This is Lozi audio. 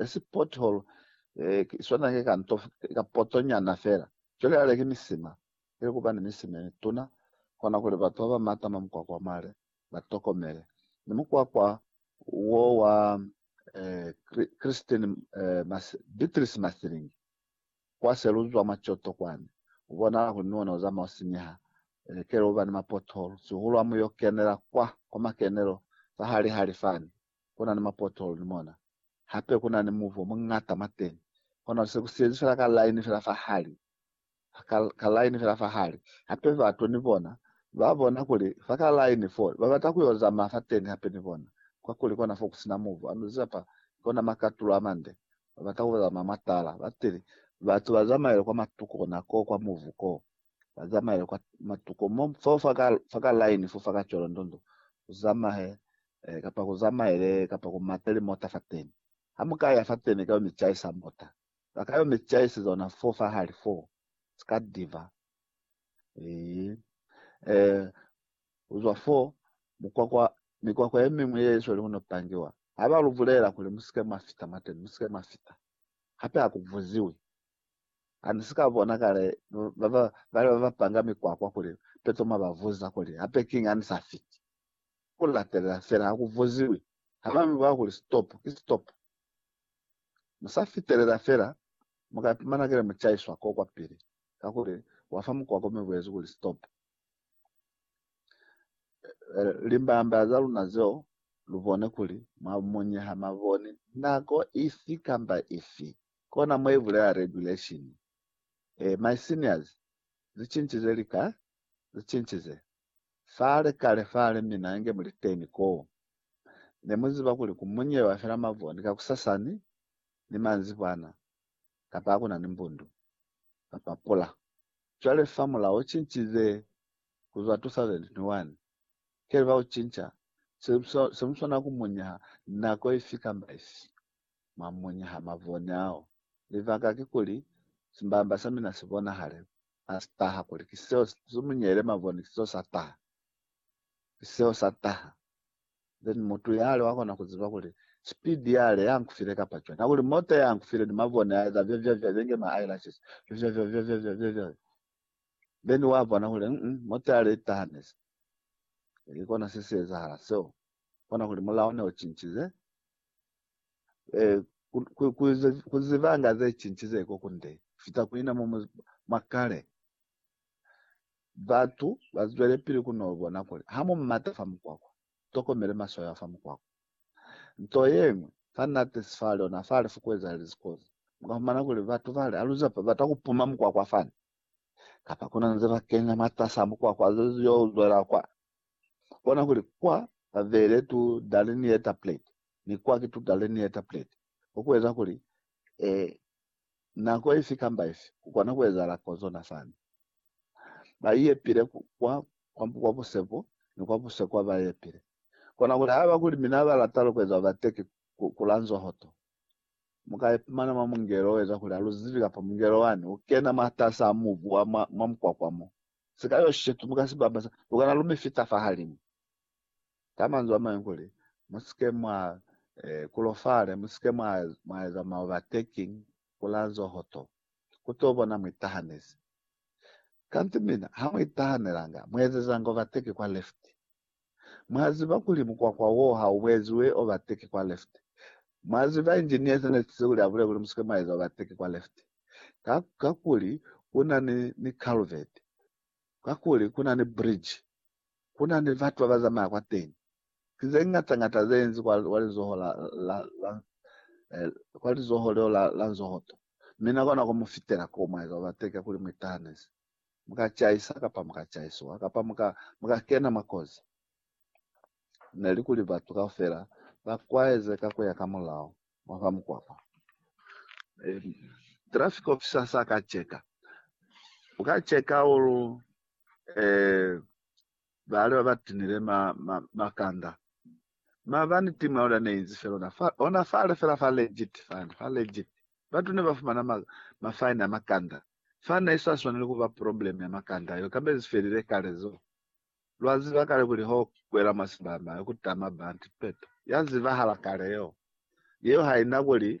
e si pothole, ki swana ki ka nto, ki ka poto nyana fela. Cwale hale ki misima, ili kuba ni misima ye mituna, kona kuli batu ba ba matama mukwakwa wa mare ba tokomele. Ni mukwakwa wo wa Christine, Beatrice Mathilingi, kwa se lu zwa mwa Kyoto kwani, u bonahala kuli ni ona u zamaya u sinyeha, kele u ba ni mapothole, sihulu ha mu yo kenela kwa, kwa makenelo fa hali-hali fani, ku na ni mapothole ni mona. hape ku na ni muvi o muñata mwa teñi. Kono se ku siyezi fela ka laini fela fa hali, ka, ka laini fela fa hali. Hape batu ni bona ba bona kuli fa ka laini fo, ba bata ku yo zamaya fateñi hape ni bona, kakuli kona fo ku si na muvi. Ano zeza pa, ko na makatulo a mande. Ba bata ku zamaya mwa tala. Ba tili, Batu ba zamaile kwa matuku kona koo kwa muvi koo. ba zamaele kwa matuko mo fo fa ka fa ka line fo fa ka cwela ndondo ku zamahe eh, kapa ku zamaele kapa ku mate li mota fa teni ha mu ka ya fa teni ka yo mi caisa mota ba ka yo mi caise zona fo fa hali fo ska diva eh, eh uzwa fo mukwakwa mikwakwa ye mingwe ye isweli kuno pangiwa ha ba lu bulela kuli musike mwa fita mwa teni musike mwa fita hape ha ku vuziwi Hanisika bona kale baba bali baba panga mikwakwa kuli betoma bavuza kuli hape king anisa fiti. Kulatelela fela hakuvuziwi haba mibona kuli stop ki stop. Musa fitelela fela muka ipumana kile muchaiswa ko kwapili kakuli wafa mukwakwa mi buezi kuli stop. Limbamba za luna zeo lubone kuli mwa munyeha maboni nako ifi kamba ifi. Kona mo ibulela regulation. Eh my seniors, zicinchize lika, zicinchize. Fale kale fale mina nge muliteni koo. Nemuziba kuli kumunyewa fela mavoni kakusasani ni manzibwana kapa hakuna ni mbundu kapa pula. Cwale fa mulao ucinchize kuzwa 2021, keliba ucincha, semuswana kumunyeha nako ifi kamba ifi. mwa muñi ha mavone ao. Libaka kikuli, simbamba sa mina si bonahale ha si taha, kuli ki seo si zumuñele mavone, ki seo sa taha. Ki seo sa taha. Then mutu yale wa kona ku ziba kuli, Speed yale ya nkufile kapa cwani? Hakuli mota ya nkufile ni mavone a eza vyavyavya, bya nge ma eyelashes, vyavyavya, vyavyavya, vyavyavya. Then wa bona kuli, mm, mm, mota yale i tahanezi. Ki kona se si ezahala seo. Bona kuli mulao ne u cincize, eh, kuzibanga ze cincize ko kunde fita kuina mo mwa kale. Batu bazwele pili kuno bona kuli ha mu mata fa mukwakwa, tokomele maswayo a fa mukwakwa. Nto yengwe fa nate sifale ona fa lefu kuezahale zikozi, mukafumana kuli batu bale aluze bata kupuma mukwakwa fani, kapa kuna nze ba kenya mwa tasa mukwakwa yo uzwela kwa. Bona kuli kwa babele tu dali ni eta plate, ni kwa ki tu dali ni eta plate. Ko ku eza kuli, eh, nako ifi kamba ifi, ku kona ku ezahala ko zona sani. Ba iyepile ku kwa, kwa, kwa busepo, ni kwa busekwa ba iyepile. Kona kuli, haiba kuli mina ba lata lukwezo ba teki ku, ku lanzwa hoto, Mu ka ipumana mwa mungelo o eza kuli ha lu zibi kapa mungelo wani u kena mwatas'a mubu wa mwa, mwa mukwakwa mo. Sika yo shetu mu ka si bamba sa, lu kana lu mi fita fahalimu. Ka manzwi a mañwi kuli, Mu si ke mwa e, kulofale, mu si ke mwa, mwa eza ma overtaking, ku la zoho to. Ku t'o bona mu itahanezi. Kanti mina, ha mu itahanelanga, mu ezezanga overtake kwa left. Mwa ziba kuli mukwakwa woo ha u bweziwe overtake kwa left. Mwa ziba engineer se nesize kuli a bulele kuli musike mwa eza overtake kwa left ka, kakuli kuna ni, ni culvert, kakuli kuna ni bridge, kuna ni batu baba zamaya kwateñi. Ki ze ñata ñata ze enzi kwa, kwa lizoho la, la, la, eh, kwa lizoho leo la, la nzohoto. Mi na kona ku mu fitela koo mwa eza overtake kakuli mu itahanezi. mu ka caisa kapa mu ka caisiwa, kapa mu ka, mu ka kena mwa kozi. Ne li kuli batu kaufela ba kwaeze ka ku ya ka mulao wa fa mukwakwa. E, traffic officer sa ka cheka, u ka cheka ulu, e, bale ba ba tinile ma, ma, makanda. Mabani timu ya luna ne inzi fela ona fa, ona fale fela fa legit, fale, fa legit. Batu ne ba fumana ma, mafaini a makanda. Faina i sa swaneli ku ba probleme ya makanda yeo, kamba i felile kale zo. Lwa ziba kale kuli ho kwela mwa simbama yo ku tama banti peto ya zibahala kale yeo. Yeo ha i na kuli